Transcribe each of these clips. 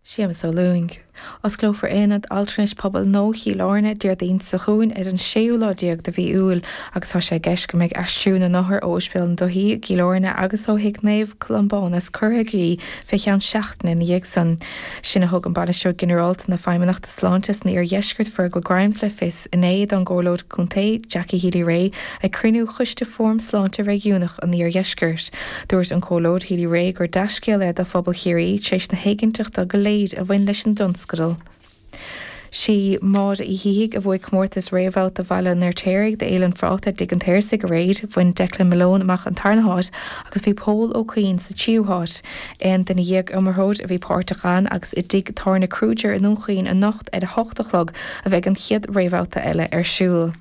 Séamus Ó Lúing. Osclófar Aonad Altranais Pobail Nua Chill Airne, Déardaoin seo chugainn ar an séú lá déag de mhí Iúil agus tá sé i gceist go mbeidh aistriú na n-othar ó Oispidéal na Dúthaí i gCill Airne agus ó Thigh Naomh Colmbánas curtha i gcrích fé cheann seachtaine ina dhiaidh san. Sin a thug an Bainisteoir Ginearálta na Feidhmeannachta Sláinte san Iar-Dheisceart, Fergal Grimes le fios. inné don gComhairleoir Contae Jackie Healy-Rae ag cruinniú Choiste Fóram Sláinte Réigiúnach an Iardheiscirt. Dúirt an Comhairleoir Healy-Rae gur dea-scéal é do phobal Chiarraí tar éis na héiginnteachta go léir a bhain leis an dtionscadal. Sí Máire Uí Shíthigh a bhuaigh comórtas réamhbhabhta Bhaile an Fheirtéaraigh do Fhéile an Phráta i dTigh an tSaorsaigh aréir. Bhain Declan Malone amach an tarna háit agus bhí Pól Ó Cuinn sa tríú háit. Aon duine dhéag iomaitheoir a bhí páirteach ann agus i dTigh Tábhairne Kruger i nDún Chaoin anocht, Ar a hocht a chlog a bheidh an chéad réamhbhabhta eile ar siúl.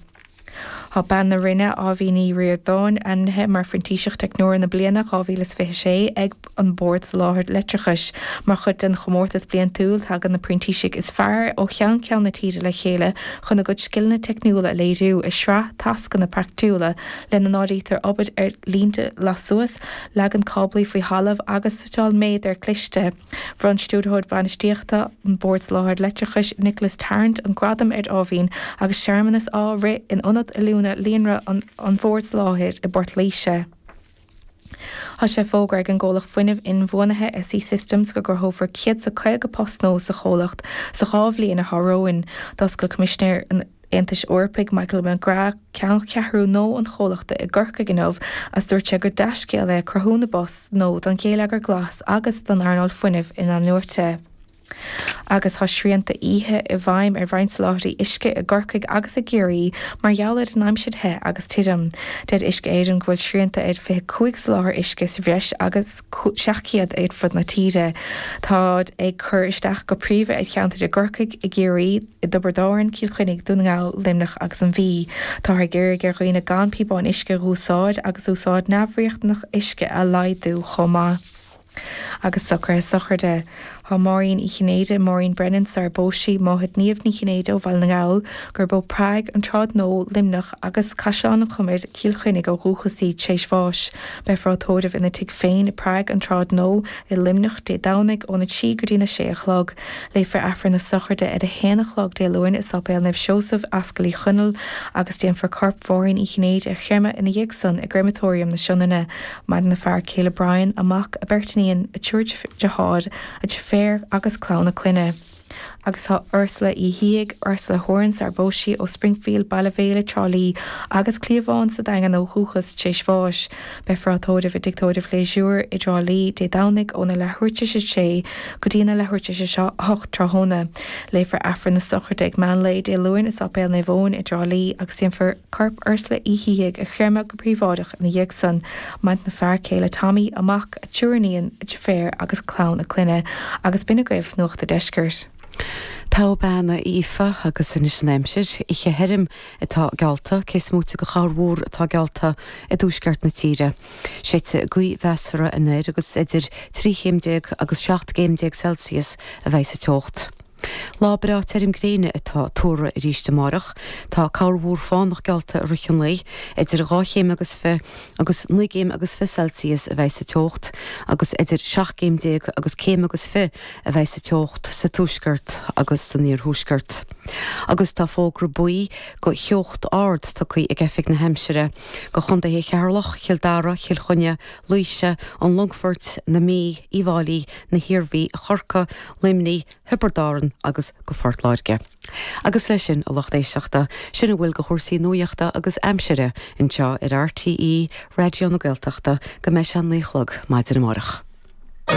Tá bean na Rinne, Áibhín Ní Ríordáin, ainmnithe mar Phrintíseach Teicneora na Bliana 2026 ag An Bord Soláthair Leictreachais. Mar chuid den chomórtas bliantúil, tagann na printísigh is fearr ó cheann ceann na tíre le chéile chun a gcuid scileanna teicniúla a léiriú i sraith tascanna praiticiúla, lena n-áirítear obair ar línte lassuas, leagan cáblaí faoi thalamh agus suiteáil méadair cliste. Bhronn Stiúrthóir Bainistíochta an Bhoird Soláthair Leictreachais, Nicholas Tarrant, an gradam ar Áibhín agus searmanas á rith in Ionad Oiliúna Líonra an Bhoird Soláthair i bPort Laoise. Tá sé fógartha ag an gcomhlacht fuinnimh inbhuanaithe SE Systems go gcruthófar 150 post nua sa chomhlacht sa 2 bhliain atá romhainn. D'oscail Coimisinéir an. Aontais Eorpaigh, Michael McGrath, ceanncheathrú nua an chomhlachta i gCorcaigh inniu agus dúirt sé gur dea-scéal é cruthú na bpost nua don gheilleagar glas agus don earnáil fuinnimh in-athnuaite. Agus tá srianta oíche i bhfeidhm ar roinnt soláthraí uisce i gCorcaigh agus i gCiarraí mar gheall ar an aimsir the agus tirim. Deir Uisce Éireann go bhfuil srianta ar 25 soláthar uisce sa bhreis agus. 700 ar fud na tíre. Táid ag cur isteach go príomha ar cheantair i gCorcaigh, i gCiarraí, i dTiobraid Árann, Cill Chainnigh, Dún na nGall, Luimneach agus an Mhí. Táthar ag iarraidh ar dhaoine gan píobáin uisce a dh'úsáid agus úsáid neamhriachtanach uisce a laghdú chomh maith agus socruithe sochraide, Tá Máirín Uí Chinnéide, Maureen Brennan, sarar phós sí, máthair Niamh Ní Chinnéide ó Bhaile na nGall, gurb ó Prág, An tSráid Nua, Luimneach agus Caisleán an Chomair, Cill Chainnigh ó dhúchas í tréis bháis. Beidh sí á tórramh ina tigh féin i bPrág, An tSráid Nua, i Luimneach, Dé Domhnaigh, óna 3 go dtí na 6 a chlog. Léifear Aifreann na Sochraide ar a haon a chlog Dé Luain i Sáipéal Naomh Seosamh, Ascaill Uí Chonaill, agus déanfar corp Mháirín Uí Chinnéide a chreimeadh ina dhiaidh san i gCreimeatóiriam na Sionainne, Maireann a fear céile Brian, a mac, a beirt iníon, a triúr deartháir, a deirféar agus clann a clainne. Agus tá Ursula Uí Shíthigh, Ursula Horan, sarar phós sí, ó Springfield, Baile Mhéile, Trá Lí, agus Cliathbhán sa Daingean ó dhúchas, tréis bháis. Beifear á tórramh i dtigh tórraimh Gleasure i dTrá Lí, Dé Domhnaigh, óna leathuair tréis a 6 go dtína leathuair tréis a 8 tráthnóna. Léifear Aifreann na Sochraide ag meánlae Dé Luain i Séipéal Naomh Eoin i dTrá Lí agus déanfar corp Ursula Uí Shíthigh a chréamadh go príobháideach ina dhiaidh san, maireann a fear céile Tommy, a mac, a triúr iníon, a deirféar agus clann a clainne, agus b'in agaibh Nuacht a' Deiscirt. Go mbeannaí Aoife agus anois an aimsir, oíche thirim atá geallta, cé is moite go chorrmhúr atá geallta i dtuaisceart na tíre. Séidfidh gaoth mheasartha anoir agus idir trí chéim déag agus seacht gcéim déag Celsius a bheidh sa teocht. Lá breá tirim gréine atá tuartha arís amárach. Tá corrmhúr fánach geallta i rith an lae. Idir dhá chéim agus fiche agus naoi gcéim agus fiche Celsius a bheidh sa teocht agus idir seacht gcéim déag agus céim agus fiche a bheidh sa teocht sa tuaisceart agus san iarthuaisceart. Agus tá fógra buí go teocht ard tugtha ag Oifig na hAimsire go chondaetha Cheatharlach, Chill Dara, Chill Chainnigh, Laoise, an Longfoirt, na Mí, Uíbh Fháilí, na hIarmhí, Chorcaí Luimnigh, Thiobraid Árann agus go Phort Láirge. Agus leis sin, a lucht éisteachta, sin a bhfuil de chúrsaí nuaíochta agus aimsire anseo ar RTÉ Raidió na Gaeltachta go mbeidh sé a naoi a chlog maidin amárach.